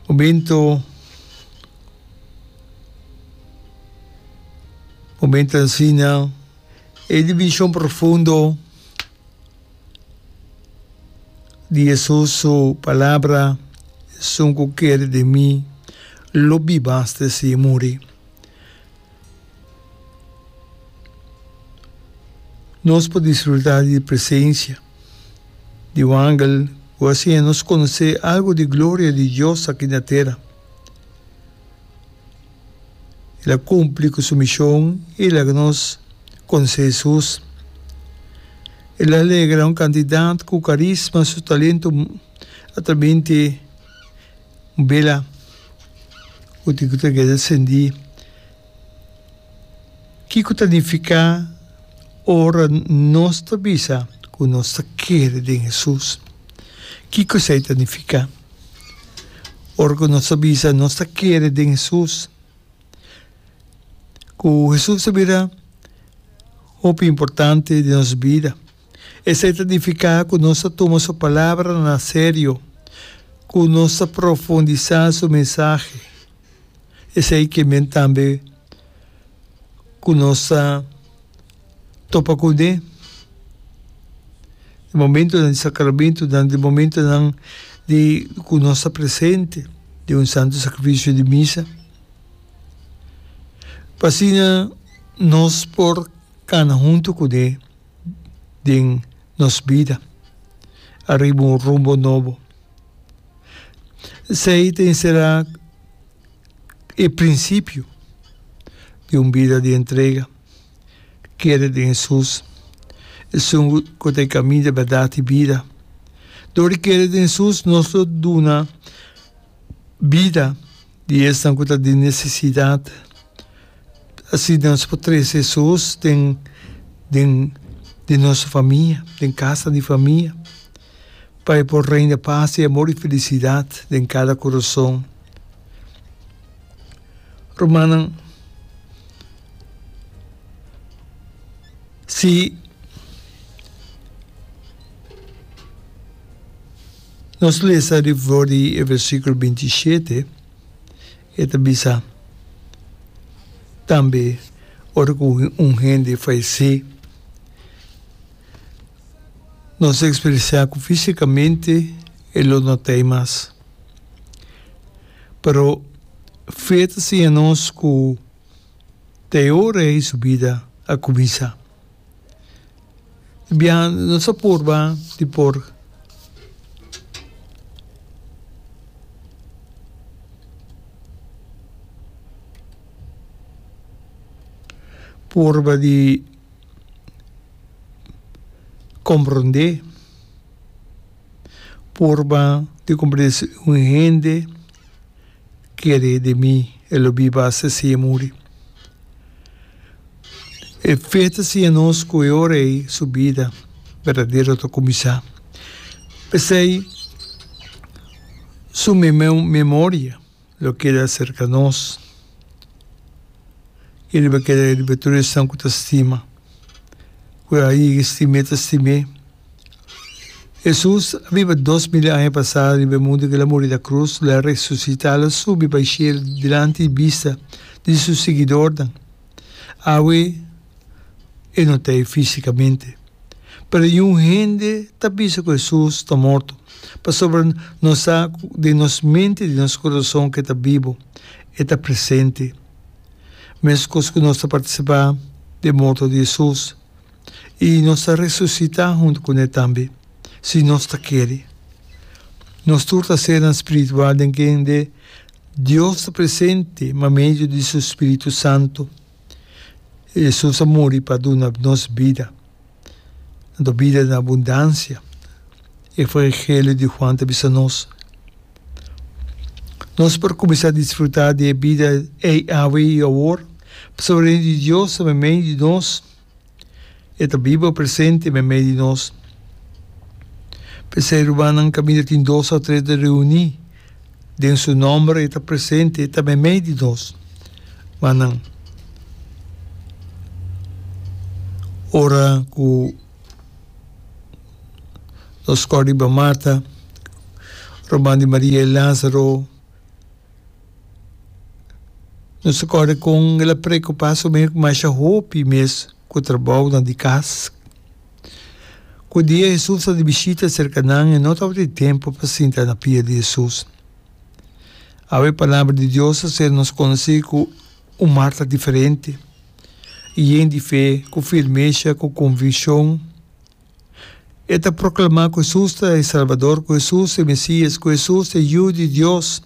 O bintu o bintu ta ensina e dimenshon profundo di Hesus su palabra, Esun ku kere di mi, lo biba hasta e siña muri. Nos por disfruta di e presensia. di un angel ku a siña nos konosé algu di gloria di Dios aki na tera. El a kumpli ku su mishon i laga nos konosé Hesus. El a alegra un kantidat ku karisma su talentu a ta bin te un bela ku tin ku ta keda sendí. Kiko ta nifiká ora nos ta bisa ku nos ta kere den Hesus? Kiko esei ta nifiká? Ora ku nos ta bisa nos ta kere den Hesus, ku Hesus ta bira hopi importante den nos bida, esei ta nifiká ku nos ta tuma su palabranan serio, ku nos ta profundisá su mensahe. esei ke men tambe ku nos ta topa kund'é. E momentonan di sakramentu nan, di momentonan di ku nos ta presente den un santu sakrifisio di misa, pa asina nos por kana huntu kund'é. den nos bida ariba un rumbo nobo. Esei ta enserá e prinsipio di un bida di entrega, kere den Hesus. Esun ku ta e kaminda, e bèrdat i bida. Dor di kere den Hesus, nos lo duna bida. Di esnan ku ta den nesesidat, asi nos por trese esos den den den nos famia, den kasa di famia, pa e por reina pas i amor i felisidat den kada koroson. Rumannan, si. Nos lesa di for di e versikulo binti i shete, e ta bisa, Tambe ora ku un hende falesé, nos ta eksperensiá ku físikamente e lo no ta ei mas. Pero, fe ta siña nos ku ta e ora ei su bida a kuminsá. Bia nos ta purba di por purba di komprende purba di komprende un hende kere di mi e lo biba hasta si e muri. E fe ta siña nos ku e ora ei su bida berdadero ta kuminsá. P'esei su memoria lo keda serka nos i riba keda riba tur esnan ku ta stima. ku a yega stim'é ta stim'é. Hesus a biba dos mil aña pasá riba e mundu ku el a muri na krus, lo a resusitá, lo a subi pa e shel dilanti di bista di su siguidornan. Awe e no ta ei físikamente, pero yun hende ta bisa ku Hesus ta morto, pasobra nos sa ku den nos mente i den nos kurason ku e ta bibu, e ta presente. Mescos cu nos ta participa den morto di Jesus y nos ta resucita hunto cu ne tambe, si nos ta kere. Nos tur ta senan spiritual den kende Dios ta presente ma medio di su Spiritu Santo. Jesus a muri pa duna nos bida. anto bida den abundansia. E Evangelio di Juan ta bisa nos, Nos por kuminsá disfrutá di e bida ei awe i awor, pasobra Reino di Dios ta meimei di nos. E ta biba, presente, meimei di nos. P'esei, rumannan kaminda tin dos òf tres ta reuní, Den su nomber e ta presente, e ta meimei di nos. Ma nan, ora ku nos skor riba Marta, ruman di Maria i Lazaro, nos ta kore kon el a preokupá su mes ku masha hopi mes ku trabounan di kas. Ku dia Hesus a di bishita serka nan, e no tabata tempu pa sinta na pia di Hesus. Awe e Palabra di Dios a ser nos konosé ku un Marta diferente, yen di fe, ku firmesha, ku konvikshon. E ta proklamá ku Hesus ta e Salbador, ku Hesus ta e Mesías, ku Hesus ta e Yu di Dios.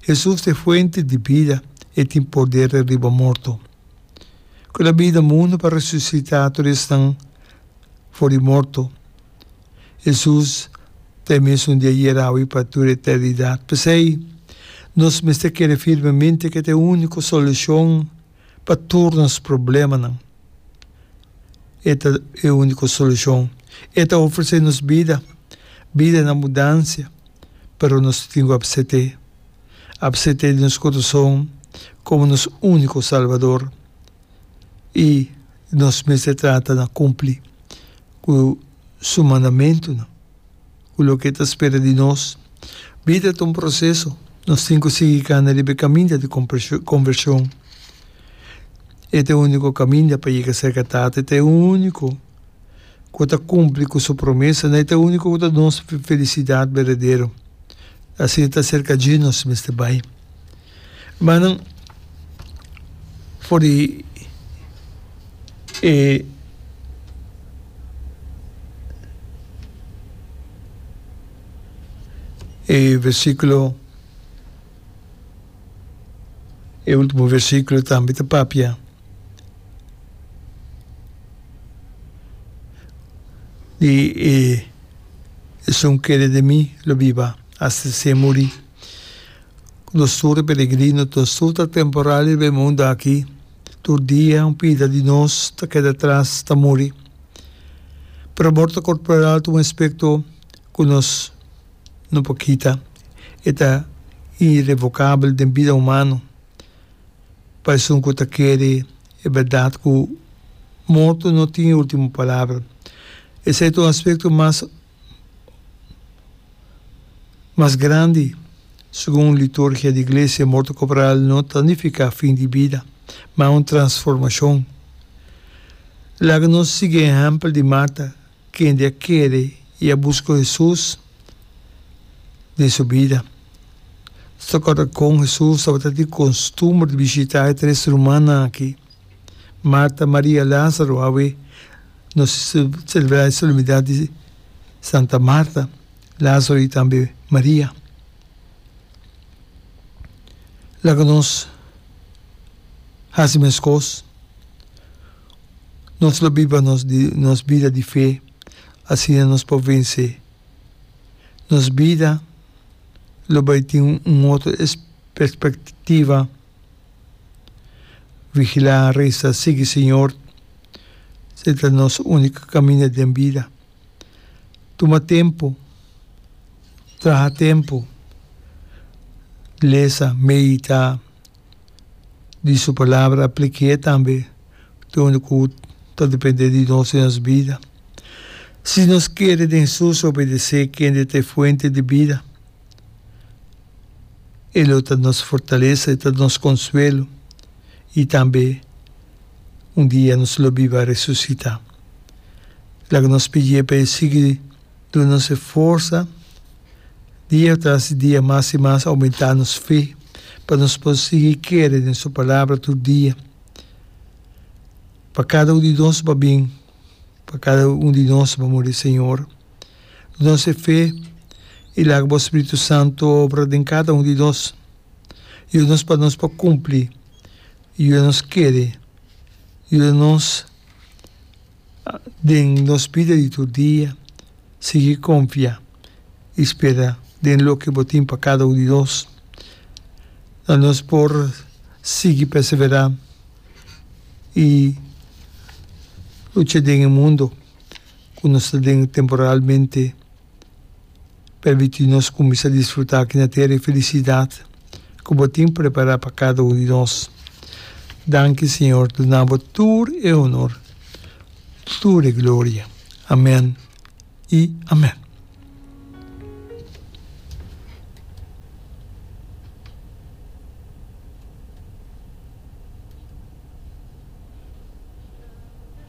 Hesus ta e Fuente di bida, e tin porder riba morto. ku ta bida mundu pa resusitá tur esnan for di morto. Hesus ta e mesun di ayer, awe i pa tur eternidat. P'esei, nos mester kere firmemente ku e ta e úniko solushon pa tur nos problemanan. E ta e úniko solushon. E ta ofresé nos bida, bida na mudansia, pero nos tin ku apsept'é. a psete di nos corazon como nos unico Salvador y nos mester trata na cumpli cu su mandamentonan, cu loke e ta spera di nos. Bida ta un proceso, nos tin cu sigui cana riba e caminda di conversion. E ta e unico caminda pa yega cerca Tata y ta e unico. ku ta kumpli ku su promesa, na e ta úniko ku ta nos felisidat berdadero. Asina ta aserka dje nos mester bai. Hermannan, for di e e versíkulo, e último versíkulo tambe ta papia. Di e esun kere di mi lo biba hasta sin muri. Nos tur ta peregrino, nos tur ta temporario den e mundu aki. Tur dia un pida di nos ta keda atras, ta muri. Pero morto corporal ta un aspecto cu nos no por kita. E ta irrevocable den bida humano. Pa esun ku ta kere e bèrdat ku morto no tin e último palabra, esei ta un aspekto mas mas grandi. Segun liturgia di Iglesia, morto korporal no ta nifiká fin di bida, ma un transformashon. Laga nos sigui e ehèmpel di Marta. Kende a kere i a buska Hesus den su bida. Sta kòt dikon Hesus tabata tin kostumber di bishitá e tres rumannan akí, Marta, Maria i Lázaro. Awe nos selebrá e solemnidat di Santa Marta, Lázaro i tambe Maria. Laga nos hasi meskos. Nos lo biba nos di nos bida di fe, asina nos por vensé. Nos bida lo bai tin un otro perspectiva, vigilá, resa, sigui Señor, se ta nos único caminda den bida. Tuma tempu, traha tempu, lesa, meditá. di su palabra plik'é tambe dor ku ta dependé di nos den nos bida. Si nos kere den sus obedesé kende ta e Fuente di bida, e lo ta nos fortalesa, e ta nos konsuelo i tambe un dia nos lo biba resusitá. Laga nos pidié pa e sigui. Tur nos e forsa, dia tras dia mas i mas oumentá nos fe pa nos por sigui kere den su Palabra tur dia. Pa kada un di nos pa bin, pa kada un di nos pa muri, Señor, dunos e fe i laga Bo Spiritu Santu obra den kada un di nos. Yuda nos pa nos por cumpli, yuda nos kere, yuda nos Den nos bida di tur dia, sigui konfia i spera den loke bo tin pa kada un di nos. La nos por sigui perseverá i lucha den e mundu ku nos ta den temporalmente. Permití nos kuminsá disfrutá aki na tera e felisidat ku bo tin prepará pa kada un di nos. Danki, Señor, duna bo tur e honor, tur e gloria. Amèn i amèn.